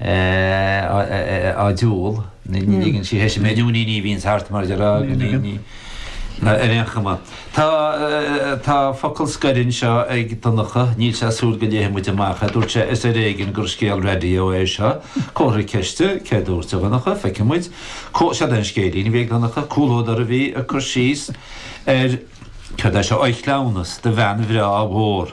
eh, á diúl, ní ligeann sí thairis mé, nó ní, ní bhíonn thart, mar de rá, ní, ní, ar aon chuma. Tá, eh, tá focal scoir anseo ag Donncha, níl sé ag súil go léifidh muid amach é, dúirt sé, is ar éigean gur scéal raidió é seo, comhartha ceiste, céard a dúirt tú a Dhonncha, feicfidh muid, có, seo an scéilín a bhí ag Donncha, comhluadar a bhí ag cur síos ar, céard é seo, oíche cleamhnais do bhean bhreá mhór.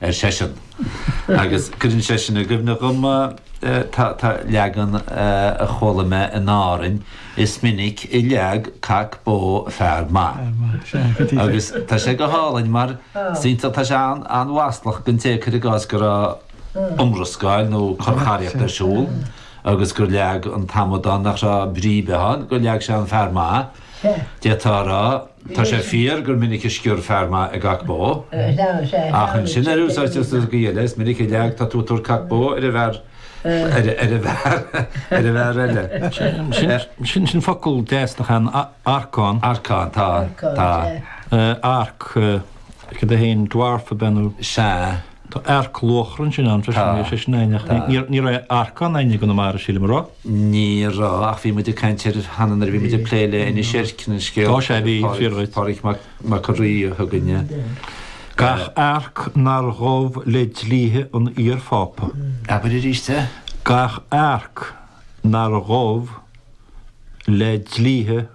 ar seisean. Agus cuireann sé sin i gcuimhne dhom tá leagan a chuala mé in Árainn, Is minic a leag cac bó fear maith. Agus tá sé go hálainn mar is iontach, tá sé an-mhaslach don té, cuir i gcás, go raibh iomrascáil nó corraíocht ar siúl agus gur leag an t-amadán nach raibh brí ar bith ann, gur leag sé an fear maith, d'fhéadfá a rá. Tá sé fíor gur minic a sciorr fear maith i gcac bó, ach ansin an rud sa gcaoi eile. Is minic a leag, tá tú ag tabhairt cac bó ar an bhfear eile. Sin sin focal deas nach ea, arcán. Arcán, tá, tá. Arc, cad é féin, dwarf ab ea nó? Sea. Tá earc luachra ansin ann freisin, ní hé sin é, ach ní raibh earcán againne i gConamara, sílim, a raibh? Ní raibh, ach bhí muid ag caint air cheana nuair a bhí muid ag plé le Inis Eirc an scéal. Tá sé, bhí, fíor dhuit. Pádraig Mac an Rí a thug an dán. Gach arc nár ghabh le dlíthe an iar-Phápa. Abair arís é? Gach arc nár ghabh le dlíthe.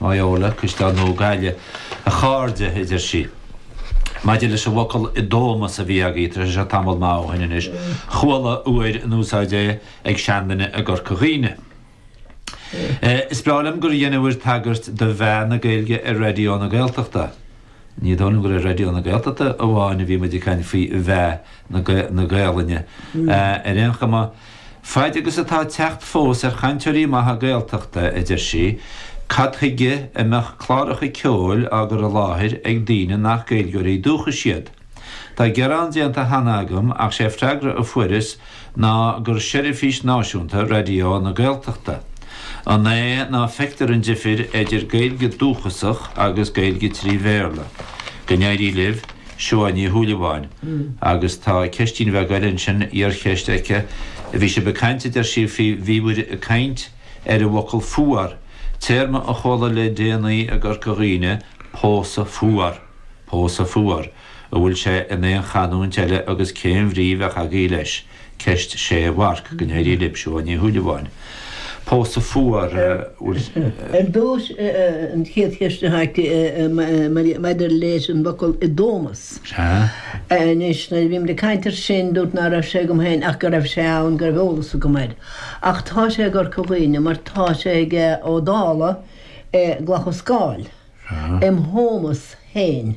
Baile Eamoinn, An Caisleán Nua, Gaillimh, a chairde, a deir sí. Maidir leis an bhfocal 'dómas' a bhí agaí cad é seo tamall maith ó shin anois, chuala fhéin in úsáid é ag seanduine i gCorca Dhuibhne. Is breá liom gur deineamhair tagairt do mheath na Gaeilge ar Raidió na Gaeltachta. Ní dóigh liom gur ar Raidió na Gaeltachta amháin a bhí muid ag caint faoi mheath na Gaelainne. Ar aon chuma. Faid agus atá teacht fós ar chainteoirí maithe Gaeltachta, a deir sí, cad chuige a mbeadh cláracha ceoil á gcur i láthair ag daoine nach Gaeilgeoirí dúchais iad? Tá gearán déanta cheana agam ach sé freagra a fuaireas ná gur seirbhís náisiúnta Raidió na Gaeltachta. An é ná feictear an difir eidir Gaeilge dúchasach agus Gaeilge trí Bhéarla? Go n-éirí libh. Siobhán Ní Shúilleabháin, agus tá ceistín bheag eile ansin, iarcheist, aici. Bhí sibh ag caint, a deir sí, faoi, bhí muid ag caint ar an bhfocal 'fuar', téarma a chuala le déanaí i gCorca Dhuibhne, 'pósadh fuar', pósadh fuar. An bhfuil sé in aon chanúint eile agus cén bhrí bheadh agaí leis? Ceist 6 mharc, Go n-éirí libh, Siobhán Ní Shúilleabháin. Pósadh fuar, a bhfuil. Ar dtús, an chéad cheist a tháinig maidir leis an bhfocal 'i dtómas' Anois, nuair a bhíomar ag caint ar sin, dúirt ná raibh sé agam féin ach go raibh sé ann, go raibh eolas agam air. Ach tá sé i gCorca Dhuibhne mar tá sé ag Ó Dálaigh i gClocha Scáil, im' thómas féin.